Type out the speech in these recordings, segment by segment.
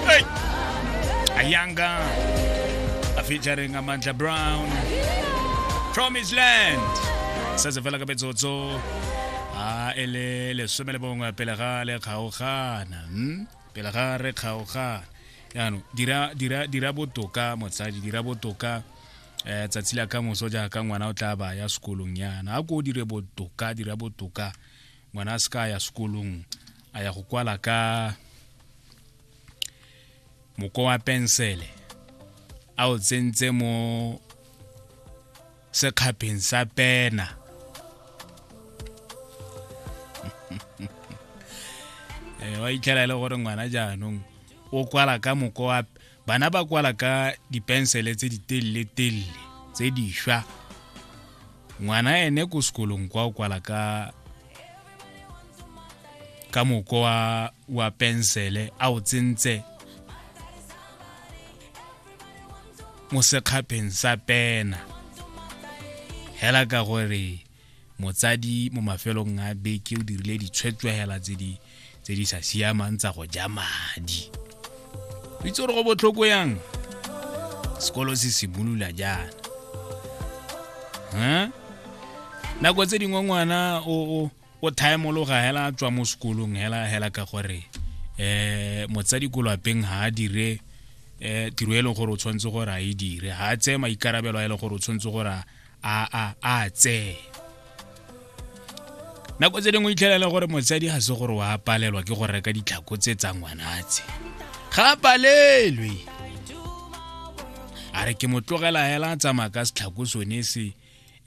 Hey! Ayanga featuring Amandla Brown Promise Land setse fela ka metsotso a e le lesome le bongwe pele ga le kgaogana hmm? pele ga re kgaogana yaanong dira dira dira botoka motsadi dira botoka eh tsatsi la ka moso jaaka ngwana o tla ba ya sekolong yana a ko dire botoka dira botoka ngwana a se ka ya sekolong a ya go kwala ka moko wa pensele a o tsentse mo sekgapeng sa pena eh, wa itlhela e le gore ngwana jaanong o kwala ka moko wa bana ba kwala ka dipensele tse di telele telele tse di shwa ngwana ene ko sekolong kwa o kwala ka ka moko wa wa pensele a o tsentse mo sekgapheng sa pena hela ka gore motsadi mo mafelong a beke o dirile ditshwetswegela tse di tse di sa siamang tsa go ja madi o itse gore go botlhoko yang sekolo se simolola jaana huh? nako tse dingwe ngwana o o thaemologa hela tswa mo sekolong hela hela ka gore eh motsadi ko lapeng ha a dire eh tiro e leng gore o tshwanetse gore a e dire ha a tseye maikarabelo a e leng gore o tshwanetse gore a a a tsee nako tse dingwe itlhelela gore motsadi ga se gore wa palelwa ke go reka ditlhako tse tsa ngwanatse ga palelwe a re ke mo tlogela hela a tsamaya ka setlhako sone se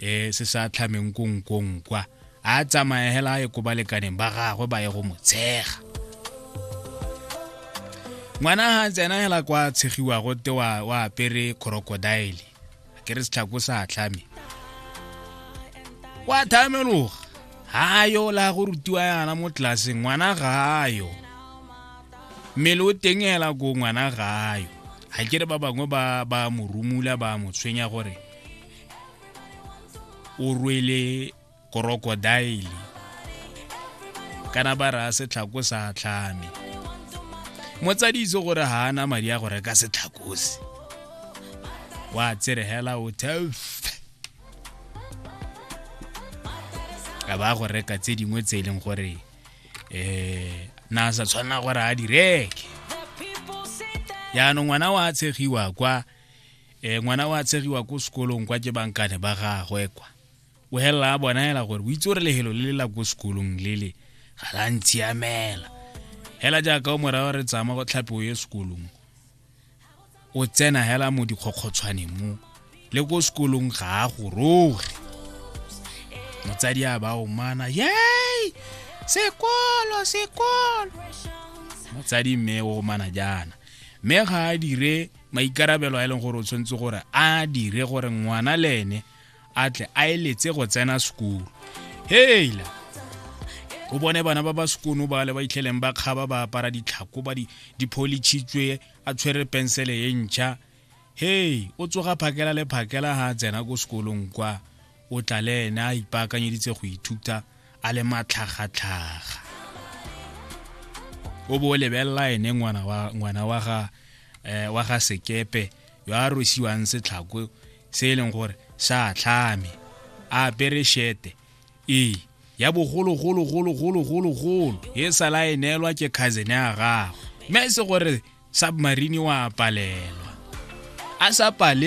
um se sa tlhameng konkong kwa a tsamaya hela a ye ko balekaneng ba gagwe ba ye go mo tshega ngwana ga tsena hela kwa tshegiwago te wa apere crocodile ke re setlhako sa tlhame kwa thameloga ga yo la go rutiwa yana mo tlelaseng ngwana ga yo mmele o teng ela ko ngwana ga yo ga ke re ba bangwe ba ba mo rumula ba mo tshwenya gore o rwele krokodaele kana ba raya setlhako sa tlhame motsadi itse gore ga ana madi a go reka setlhakose wa tseregela o tef a ba go reka tse dingwe tse e leng gore um na sa tshwanela gore a di reke yaanong ngwana wa tshegiwa kwa um ngwana wa tshegiwa ko sekolong kwa ke bankane ba gagwe kwa o helela a bonaela gore o itse gore lehelo le le la ko sekolong lele ga la ntshiamela hela jaaka o morago re tsama go tlhape o ye sekolong o tsena hela mo dikgokgotshwane mo le ko sekolong ga a goroge motsadi a ba omana yei sekolo sekolo motsadi mme o omana jaana mme ga a dire maikarabelo a e leng gore o tshwanetse gore a dire gore ngwana le ene a tle a eletse go tsena sekolo heila o bone bana ba ba sekono ba le ba itlheleng ba kgaba ba apara ditlhako ba dipholitšhitswe a tshwere pensele e ntšha hei o tsoga phakela le phakela ga a tsena ko sekolong kwa o tla le ene a ipaakanyeditse go ithuta a le matlhagatlhaga o bo o lebelela ene ngwana wa ga eh, sekepe yo a rwesiwang setlhako se e leng gore sa tlhame a apere shete ee ya bogologologologologologolo e sala e neelwa ke cousin ya gagwe mme e se gore submarine wa palelwa a sa pale